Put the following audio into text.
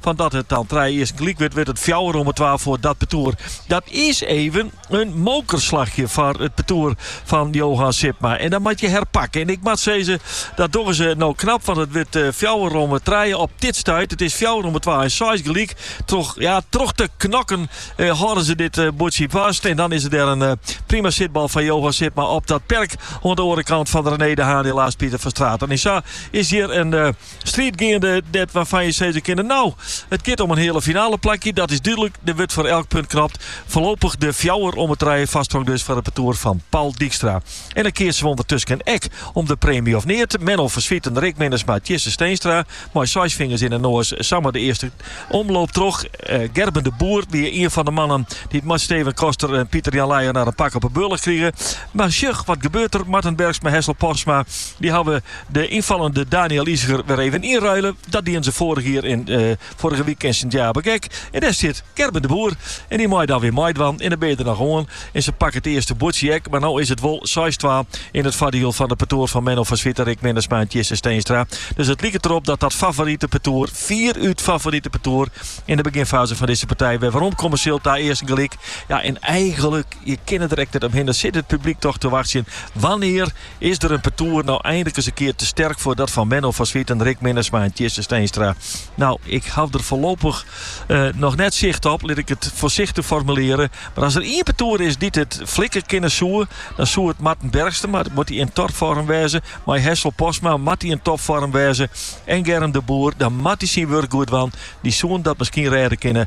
Fan dat it dan trije earsten gelyk wurdt, wurdt it fjouwer om 'e twa foar dat partoer. Dat is even in mokerslachje foar it partoer fan Johan Sipma. En dan moat je herpakken. En ik moat sizze, dat dogge se no knap, want it wurdt fjouwer om 'e trije op dit stuit. It is fjouwer om 'e twa en seis gelyk. Troch, ja, troch te knokken hâlde se dit buordsje fast. En dan is der in prima sitbal fan Johan Sipma op dat perk oan 'e oare kant fan René de Haan en Laas Pieter van Straten. En sa is hjir in striid geande wêrfan je sizze kinne. Nou, it giet om in heale finale plakje, dat is dúdlik. Der wurdt foar elk punt knokt. Foarlopich de fjouwer om de trije foarsprong dus foar it partoer fan Paul Dijkstra. En dan keatsen we ûndertusken ek om de preemje of neat. Menno van Zwieten, Rick Minnesma, Tjisse Steenstra. Mei seis fingers yn 'e noas samar de earste omloop troch. Eh, Gerben de Boer wie ien fan de mannen dy't mei Steven Koster en Pieter Jan Leijenaar in pak op 'e bealch krigen. Mar sjoch, wat gebeurt der? Marten Bergsma, Hessel Postma, dy hawwe De ynfallende Daniël Iseger wer even ynruile. Dat dienen se foarich jier yn foarige wike yn Sint Jabik ek. En dêr sit Gerben de Boer. En dy mei dan wer meidwaan. En dan binne je der noch oan. En se pakke it earste buordsje ek. Mar no is it wol seis twa yn it foardiel fan it partoer fan Menno van Zwieten, Rick Minnesma en Tjisse Steenstra. Dus it liket derop dat dat favorite partoer, fierút favorite partoer, yn de beginfaze fan dizze partij wer werom komme sil ta earsten gelyk. Ja, en eigenlik, je kinne der ek net omhinne, sit it publyk toch te wachtsjen wannear Is der in partoer no eindlik ris in kear te sterk foar dat fan Menno van Zwieten, Rick Minnesma en Tjisse Steenstra? Nou, ik haw der foarlopich noch net sicht op, lit ik it foarsichtich formulearje. Mar as der ien partoer is dy't it flikke kinne soe, dan soe it Marten Bergsma, moat dy yn topfoarm wêze, mei Hessel Postma, moat dy yn topfoarm wêze, en Gerben de Boer, dan moat dy syn wurk goed dwaan. Dy soene dat miskien rêde kinne.